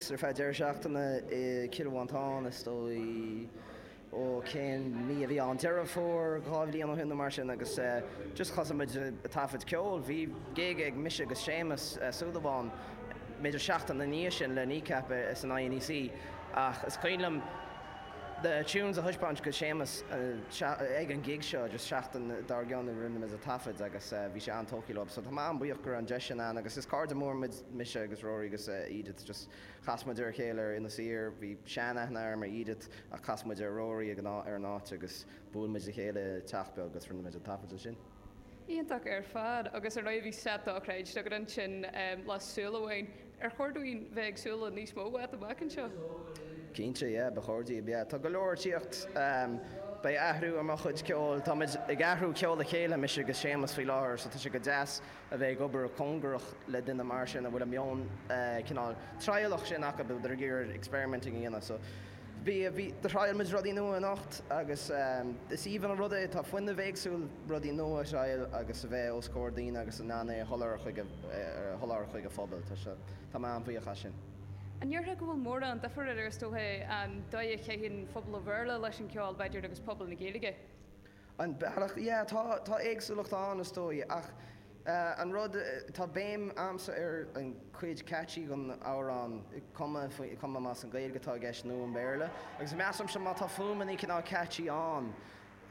ar feadh deireadh seachtaine i gCill Mhantáin, is dóigh, ó, cén mí a bhí ann, Deireadh Fómhair, dhá bhliain ó shin nó mar sin agus just thosaigh muid ag taifead ceoil, bhí gig ag mise agus Séamus Súilleabháin b'fhéidir seachtain ina dhiaidh sin le Kneecap san INEC ach is cuimhin liom na tunes a thaispeáint go Séamus ag an gig seo just seachtain dár gcionn ó a rinne muid an taifead agus bhí sé an-tógtha leo so tá mé an-bhuíoch go raibh an deis sin ann agus is cairde móra muid Mise agus Rory agus Edith, just chas muid ar a chéile ar Inis Oírr. Bhí sean-aithne agam ar Edith ach chas muid ar Rory ag an ar an áit agus bhuail muid le chéile i teach beag agus rinne muid an taifead ansin. Iontach ar fad. Agus ar ndóigh bhí slot dochreidte agat ansin lá súil amháin. Ar chóir dúinn bheith ag súil le níos mó uait amach anseo? Cinnte, yeah, ba chóir daoibh, yeah. Tá go leor tíocht. Beidh athrú ar mo chuid ceoil. Táimid ag cruthú ceoil le chéile, mise agus Séamus, faoi láthair so tá sé go deas. a bheith ag obair cóngarach le duine mar sin a bhfuil a meon cineál trialach sin acu, a bhfuil ag iarraidh experimenting a dhéanamh. So bhí, bhí, thrial muid rudaí nua anocht agus is aoibhinn an rud é, tá fuinneamh éagsúil rudaí nua a thrial agus a bheith os comhair daoine agus in ann é a sholáthar chuig a, a sholáthar chuig an phobal. Tá sé, tá mé an-bhuíoch as sin. An ndéarfá go bhfuil mórán difir idir, is dócha, an dóigh a gcaitheann phobal an Bhéarla leis an cheol, b'fhéidir, agus pobal na Gaeilge? An bealach, yeah, tá, tá éagsúlacht ann is dóigh ach eh, an rud, tá béim a'msa ar an cuid catchy den amhrán, cuma faoi, cuma más an Gaeilg atá i gceist nó an Béarla agus measaimse má tá fuaimeannaí cineál catchy ann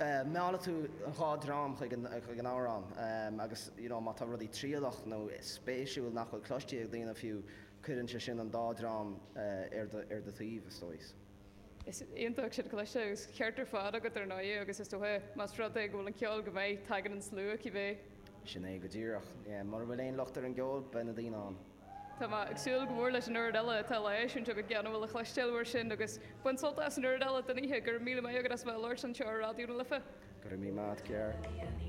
eh, meallfaidh tú an dhá dream chuig an, chuig an amhrán em agus you know má tá rudaí trialach nó spéisiúil nach bhfuil cloistí ag daoine fiú cuireann sé sin an dá dream eh, ar do, ar do thaobh is dóigh. Is iontach sin a chloisteáil, agus ceart ar fad agat ar ndóigh, agus is dócha más rud é go bhfuil an ceol go maith, tagann an slua cibé. Sin é go díreach. Mura bhfuil aon locht ar an gceol, beidh na daoine ann. Tá mé ag súil go mór leis an oiread eile atá le heisiúint agat, go léir a bhfuil le cloisteáil uait ansin, agus bain sult as an chuid eile den oíche. Go raibh míle maith agat as a bheith ag labhairt anseo ar Raidió na Life. Go raibh míle maith a't, Ger.